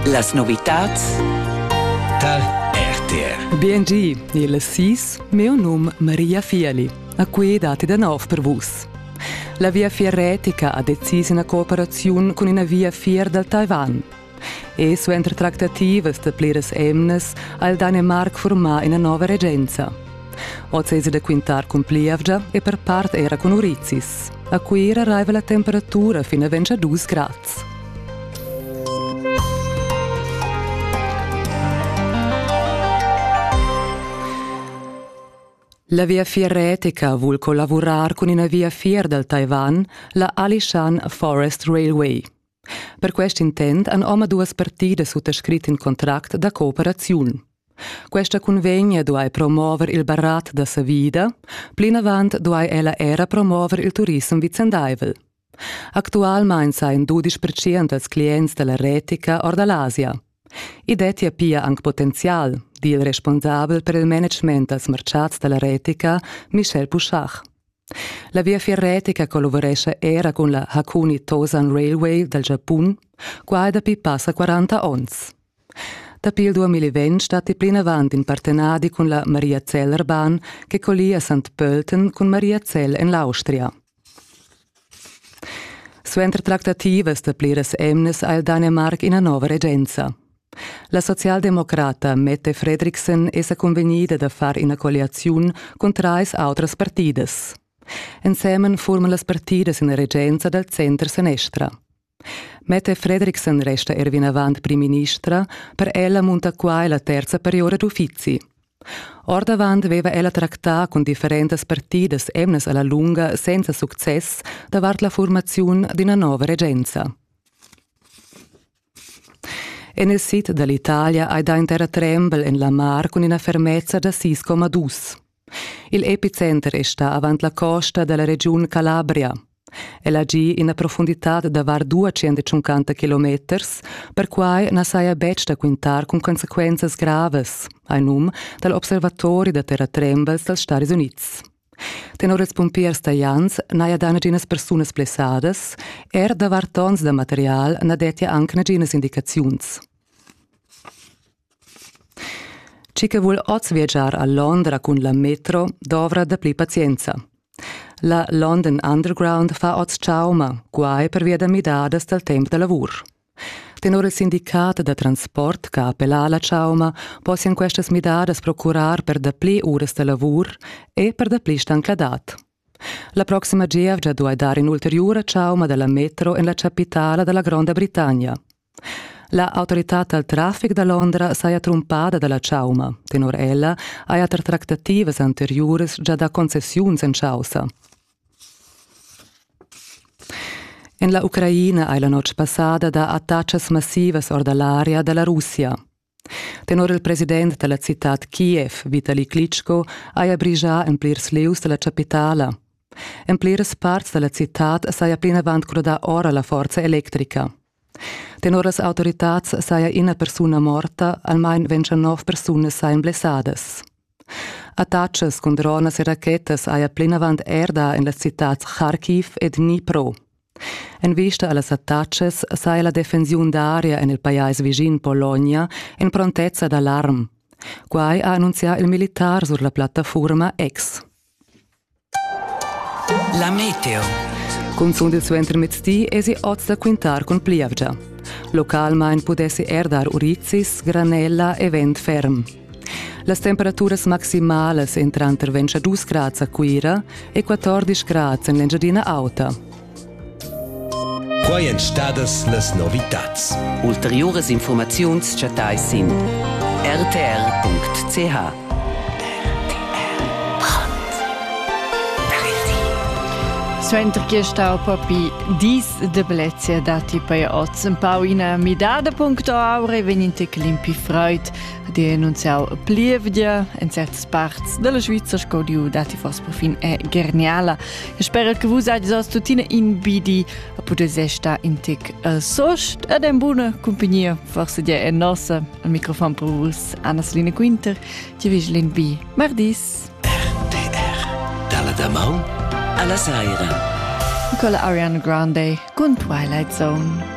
Las novitads tar RTR. BNG, il SIS, meo num Maria Fiali. A cui date da nov per vus. La viafier retica ha decis una cooperazione con una viafier dal Taiwan. E suenter tractativas da pliras emnas ha il Danemark formà una nuova regenza. Oz esa da quintar cun plievgia e per part era cun urizis. A Cuira raiva la temperatura fin a 22 grads. La viafier retica vul collavurar cun ina viafier dal Taiwan, la Alishan Forest Railway. Per quest intent han omaduas partidas suttascrit in contract da cooperaziun. Questa cunvegna duai promover il barat da savida, plinavant duai ella era promover il turissem vicendaivel. Actualmain sain dudisch percent dals clients da la retica or da l'Asia. I dettia pia anc potenzial, di il responsabel per il management dals marciats da la retica, Michel Pouchard. La viafier retica collavurescha era cun la Hakuni Tosan Railway dal Giapun. Qua è dapi passa 40 onns. Dapi il 2020 statti plinavant in partenadi cun la Maria Zellrbahn che collia Sant Pölten cun Maria Zell en l'Austria. Suenter tractativas da pliras emnas ha il Danimarc ina nova regenza. La socialdemocrata Mette Fredriksen è sa cunvegnida da far ina colliaziun cun trais autras partidas. Ensemen furman las partidas ina regenza dal center-senestra. Mette Fredriksen resta er vinavant primministra, per ella munta quai la terza periora d'uffizi. Ordavant veva ella tractà cun differentas partidas emnas alla lunga senza success davart la formaziun d'ina nova regenza. En il sid da l'Italia hai dà in terratrembel en la mar cun ina fermezza da sis coma dus. Il epicenter è stà avant la costa da la regiun Calabria. El ha gì ina profunditad da var 250 kilometers, perquai na saja betg da quintar cun consequenzas gravas, hai num dal observatori da terratrembels dals Stadis Unids. Tenor ils pumpiers talians n'haja dà naginas persunas blessadas, er davart onns da material na dettia anc naginas indicaziuns. Chi che vul oz viagiar a Londra cun la metro dovra dapli pazienza. La London Underground fa oz chauma, guai pervia da midadas dal temp da lavur. Tenor il sindicat da transport che ha appellà alla chauma possian questas midadas procurar per dapli uras da lavur e per dapli stancladad. La proxima gievgia duai dar in'ulteriura chauma dalla metro en la chapitala dalla Gronda Britannia. La autoritad dal traffic da Londra saja trumpada dalla chauma. Tenor ella haja er tractativas anteriuras già dà concessiuns en chaussa. En la Ucraina hai la notg passada dà attacas massivas or da l'aria da la Russia. Tenor il president da la citad Kiev, Vitali Klitschko, haja brigià en plirs lieus da la chapitala. En pliras parts da la citad saja plinavant crudà ora la forza electrica. Tenor las autoritads saja ina persuna morta, almain 29 persunas sajan blessadas. Attatschas cun dronas e rachetas haja plinavant er dà en las citads Kharkiv e Dnipro. En vista a las attatschas saja la defensiun d'aria en il pajais vischin Pologna en prontezza d'alarm. Quai ha annunzià il militar sur la plattafurma X. La meteo. Cunzun il suentermezzdi esi oz da quintar cun plievgia. Localmain pudessi er dar urizis, granella e vent ferm. Las temperaturas maximalas entran tranter 22 grads a Cuira e 14 grads en l'Engiadina Auta. Quai èn stadas las novitads. Ulteriuras infurmaziuns chattais sin rtr.ch. Suenter che stau papi dis de blezia dati pei oz un pau ina midada puncto aure vegninte climpi freud di annunziau plievdia en certas parts della Svizzera sco diu dati fos perfin è geniala Sperer che vus hagies oz tuttina in bidi a pudess sta in tic a sost ed en buna cumpagnia forse dia en nossa al microfon per vus Anna-Selina Quinter, ti vigilin bi mardis. RTR dalla damaun alla saira. Nicola Ariana Grande con Twilight Zone.